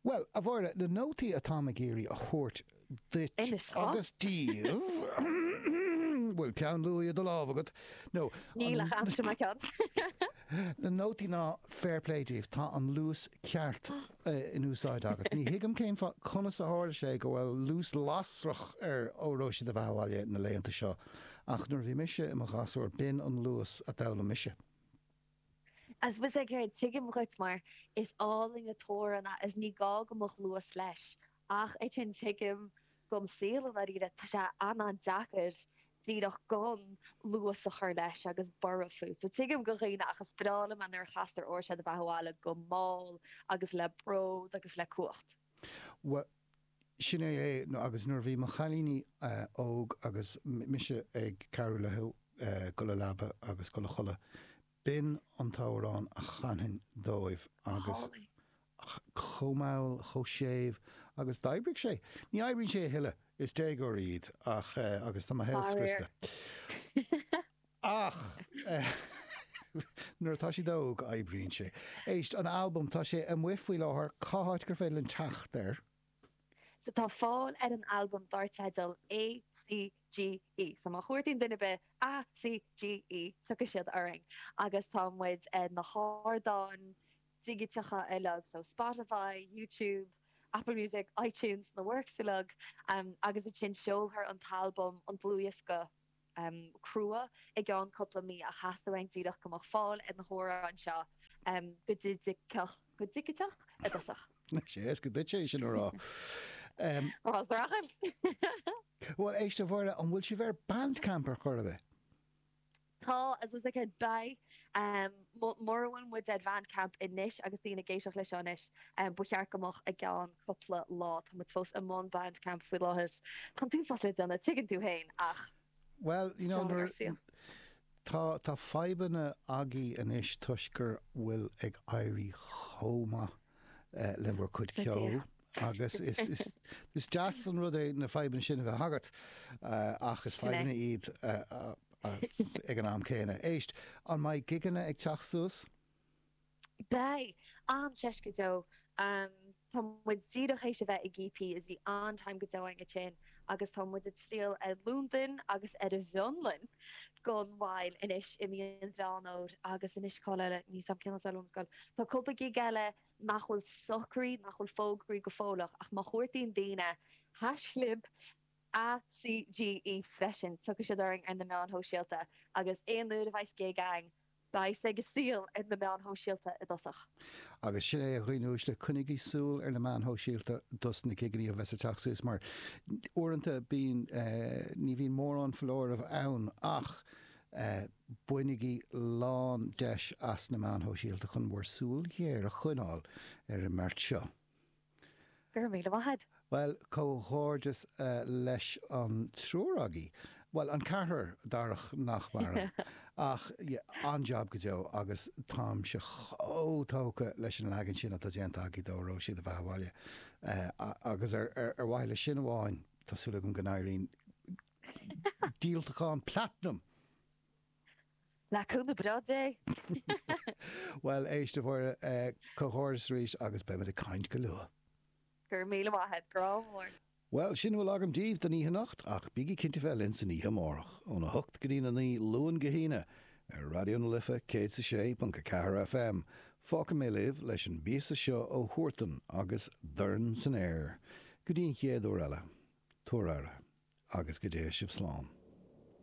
Bhuel, a Mháire, na nótaí atá mé ag iarraidh a thabhairt duit agus daoibh, bhfuil peann luaidhe i do lámh agat, nó an. Níl ach aimsir mar ceann. Na nótaí ná fair play daoibh, tá an luas ceart in úsáid agat. Ní thuigim cén fáth conas a tharla sé go bhfuil luas lasrach ar Óró Sé do Bheatha Abhaile na laethanta seo, ach nuair a bhí mise i mo ghasúr b'in an luas a d'fhoghlaim mise. Is breá liom é ar dóigh mar is álainn an t-amhrán é is ní gá go mbeadh luas leis ach ansin tuigim don saol i ndáiríre tá sé an-an-deacair díreach gan luas a chur leis agus borradh fút so tuigim do dhaoine ach is breá liom é nuair a chastar Óró Sé do Bheatha Abhaile go mall agus le bród agus le cumhacht. Bhuel, sin é é agus nuair a bhí mo chailíní óg agus mise ag cabhrú leo dul a leaba agus dul a chodladh, b'in an t-amhrán a chanfainn dóibh agus ach chomh mall, chomh séimh agus d'oibrigh sé. Ní oibríonn sé a thuilleadh, is déagóirí iad ach eh agus tá mo shaol scriosta. Ach nuair atá siad óg, oibríonn sé. Éist, an albam, tá sé amuigh faoi láthair, cá háit gur féidir linn teacht air? So tá fáil ar an albam dár teideal ACGE, so má chuartaíonn duine ar bith ACGE tiocfaidh siad orainn agus tá muid ar na hardáin dhigiteacha uilig, so Spotify, YouTube, Apple Music, iTunes, na works uilig, agus ansin seolfar an t-albam, an dlúthdhiosca, crua i gceann cúpla mí ach theastaigh uainn díreach go mbeadh fáil ar na hamhráin seo go digiteach i dtosach. Is éasca duit é sin a rá. Bhuel éist dála an scéil an bhfuil sibh ar Bandcamp ar chor ar bith? Tá as was ag ba Mura bhfuil muid ar Bandcamp anois agus daoine ag éisteacht leis seo anois, ba cheart go mbeadh i gceann cúpla lá. Tá muid fós i mbun Bandcamp faoi láthair. An t-uafás le déanamh tuigeann tú féin ach Bhuel, you know, tá tá fadhbanna agaibh anois toisc go bhfuil ag éirí chomh maith. le bhur cuid ceoil agus is deas an rud é na fadhbanna sin a bheith agat ach is fadhbanna iad ag an am céanna. Éist, an mbeidh gigeanna ag teacht suas? Beidh! Ar ndóigh! Tá muid díreach tar éis a bheith i gcp is bhí an-time go deo againn. agus tá muid ag triall ar Londain agus ar an bhFionlainn gan mhoill anois i mí Mheán Fómhair agus anois cá eile ní sam ceannas eile scoil. Tá cúpla gig eile nach bhfuil socraithe nach bhfuil fógraithe go fóilleach ach má chuairtaíonn daoine haischlib ACGE freisin tiocfaidh siad orainn ar na meáin shóisialta agus aon uair a bheas gig againn Bhíos ag súil ar na meáin shóisialta i dtosach. Agus sin é a dhaoine uaisle, coinnigí súil ar na meáin shóisialta dos na gigeannaí a bheas ag teacht suas mar uaireanta bíonn, ní bhíonn mórán foláireamh ann ach bainigí lán deis as na meáin shóisialta chun bhur súil ghéar a choinneáil ar an mbeart seo. Go raibh míle maith a'd. Bhuel, comhghairdeas leis an triúr agaibh, bhuel, an ceathrar, Darach nach maireann, ach an-jab go deo agus táimse chomh tógtha leis an leagan sin atá déanta agaibh d'Óró sé do bheatha abhaile agus ar mhaithe le sin amháin tá súil agam go n-éiríonn díoltachán platinum! Le cúnamh breá Dé! Bhuel, éist a Mháire, comhghairdeas arís agus beimid ag caint go luath! Go raibh míle maith a't, grá mór! Bhuel, sin a bhfuil agam díbh don oíche anocht, ach bígí cinnte bheith linn san oíche amárach, óna hocht go dtí na naoi, Luan go hAoine, ar Raidió na Life 106.4 FM. Fágfaidh mé libh leis an bpíosa seo ó Huartan agus Dorn san Aer. Go dtí an chéad uair eile, tabhair aire, agus go dté sibh slán.